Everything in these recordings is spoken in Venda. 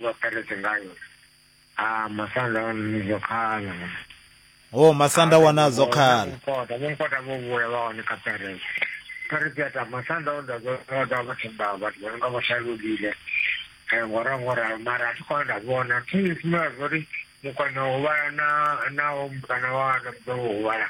Vha peretse ngayo. Ha masanda o nizwa khala. Ho masanda wana zwo khala. Mukota, mukota vho vhuya vha hone kha peretse. Peretse ya ta masanda o nda zwo da vha thimba vhathu vha nga vha shalulile. Eh ngora ngora mara a tshi khou nda vhona thi sina zwo ri mukwana u vhala na na o mukana wa na mdo u vhala.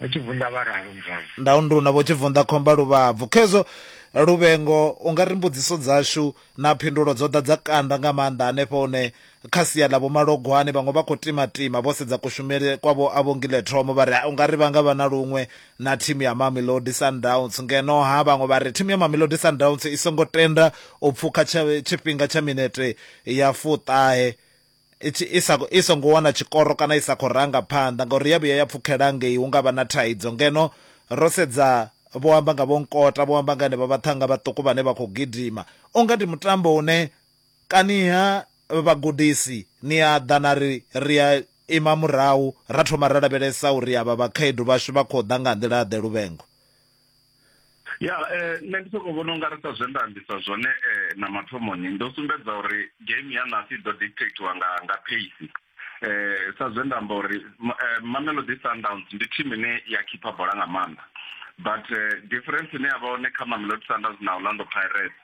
Vho Tshivunḓa vha ralo muzwale. Ndaundu na Vho Tshivunḓa Khomba Luvhabvu. Khezwo Luvhengo, u nga ri mbudziso dzashu na phindulo dzo ḓa dza kanda nga maanḓa hanefho hune kha sia ḽa Vho Malogwane vhaṅwe vha khou timatima vho sedza kushumele kwa Vho Avhongile Thomo vha ri u nga ri vha nga vha na luṅwe na thimu ya Mamelodi Sundowns. Ngeno-ha vhaṅwe vha ri thimu ya Mamelodi Sundowns i songo tenda u pfukha tsha tshifhinga tsha minete ya fuṱahe. i tshi i sa i songo wana tshikoro kana i sa khou ranga phanḓa ngauri ya vhuya ya pfukhela ngei hu nga vha na thaidzo. Ngeno ro sedza vho amba nga Vho Nkota, vho amba nga henevha vhaṱhannga vhaṱuku vhane vha khou gidima. U nga ndi mutambo une kaniha vhagudisi ni a ḓa na ri ri a ima murahu ra thoma ra lavhelesa uri avha vhakhaedu vhashu vha khou ḓa nga nḓila-ḓe, Luvhengo. ya eh, nṋe ndi sokou vhona unga ri sa zwe nda ambisa zwone eh, na mathomoni ndo sumbedza uri game ya nasi i ḓo dictatiwa nga nga pace eh sa zwe nda amba uri eh, Mamelodi Sundowns ndi team ine ya khipha bola nga maanḓa but eh, difference ine ya vha hone kha Mamelodi Sundowns na Orlando Pirates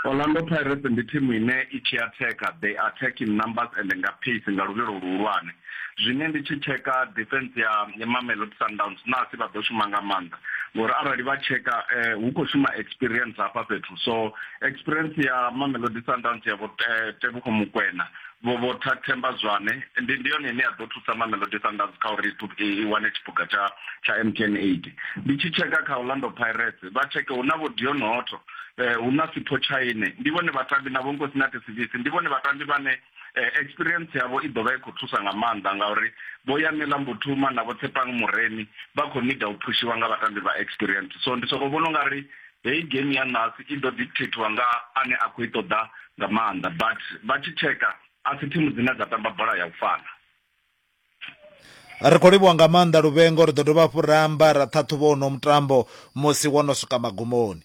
Orlando Pirates ndi thimu ine i tshi atheka, they attack in numbers and nga pace, nga luvhilo luhulwane. Zwine ndi tshi tsheka defence ya Mamelodi Sundowns nasi vha ḓo shuma nga maanḓa ngori arali vha tsheka hu khou shuma experience hafha fhethu so experience ya Mamelodi Sundowns ya vho Teboho Mokoena vho vho Themba Zwane ndi ndi yone ine ya ḓo thusa Mamelodi Sundowns kha uri i wane tshiphuga tsha tsha MTN 8. Ndi tshi tsheka kha Orlando Pirates vha tsheke hu na vho Deon Hotto eh, hu na sipho tshaine ndi vhone vhatambi na vhonkosi na tesivisi ndi vhone vhatambi vhane eh, experience yavho i ḓo vha i khou thusa nga maanḓa ngauri vho yamela mbuthuma na vho tshepang muremi vha khou nida u phushiwa nga vhatambi vha experience so ndi sokou vhona u nga ri heyi game ya nasi i ḓo dictatiwa nga ane a khou i ṱoḓa nga maanḓa but vha tshi tsheka a si thimu dzine dza tamba bola ya u fana ri khou livhuwa nga maanḓa luvhengo ri ḓo dovha hafhu ra amba ra ṱhaṱhuvha uno mutambo musi wo no swika magumoni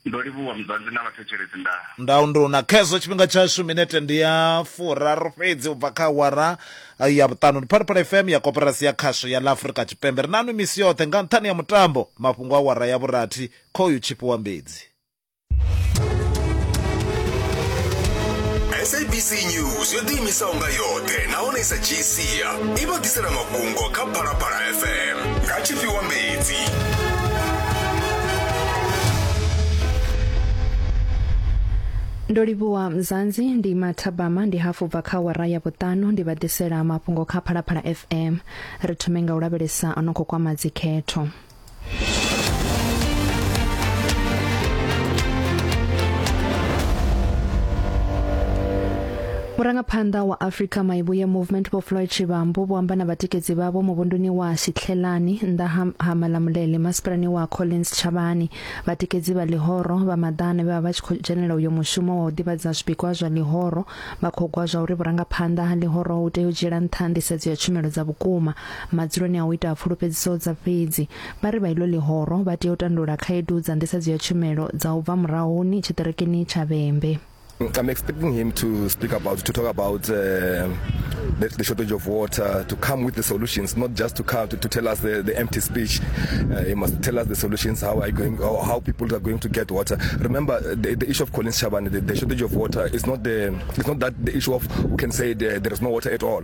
ndo livhuwa muzanzi na vhathetshelesi nda nda unduna khezwo tshifhinga tshashu minete ndi ya furaru fhedzi u bva kha awara eh, ya vhuṱanu ndi phalaphala fm ya koporasi ya khasho ya la afurika tshipembe ri nanu misi yoṱhe nga nṱhani ya mutambo mafhungo a awara ya vhurathi khoyu tshifhiwa mbedzi sabc news yo ḓiimisaho nga yoṱhe nahone i sa dzhii sia i vha ḓisela mafhungo kha phalaphala fm nga tshifhiwa mbedzi ndo livhuwa mzanzi ndi mathabama ndi hafu bva kha wara ya vhuṱanu ndi vha ḓisela mafhungo kha phalaphala fm ri thome nga u lavhelesa a no khou kwama dzikhetho murangaphanḓa wa africa maivhuye movement vho floyd tshivhambu vho amba na vhatikedzi vhavho muvhunduni wa shitlhelani nnḓa ha, ha malamulele masipalani wa collins tshavhani vhatikedzi vha ḽihoro vha maḓana vhe vha vha tshi khou dzhenela uyo mushumo wa u ḓivhadza zwipikwa zwa ḽihoro vha khou gwa zwa uri vhurangaphanḓa ha ḽihoro hu tea u dzhiela nṱha nḓisedzo ya tshumelo dza vhukuma Madzuloni a u ita pfulufhedziso dza fhedzi, vha ri vha iḽo ḽihoro vha tea u tandulula khaedu dza nḓisedzo ya tshumelo dza u bva murahuni tshiṱirikini tsha Vhembe. I'm expecting him to speak about, to talk about uh, the, the, shortage of water, to come with the solutions, not just to come to, to tell us the, the empty speech. Uh, he must tell us the solutions, how are going, how, how people are going to get water. Remember, the, the issue of Collins Chabane, the, the, shortage of water is not the, it's not that the issue of who can say the, there is no water at all.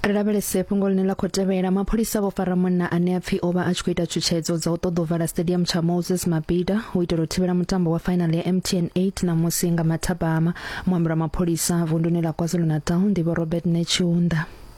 Ri lavhelese fhungo ḽine ḽa khou tevhela. Mapholisa vho fara munna ane a pfi o vha a tshi khou ita tshutshedzo dza u ṱoḓa u vala stadium tsha Moses Mabhida u itela u thivhela mutambo wa fainali ya MTN 8 ṋamusi nga mathabama. Muambeli wa mapholisa vunduni ḽa KwaZulu-Natal ndi Vho Robert Netshiunda.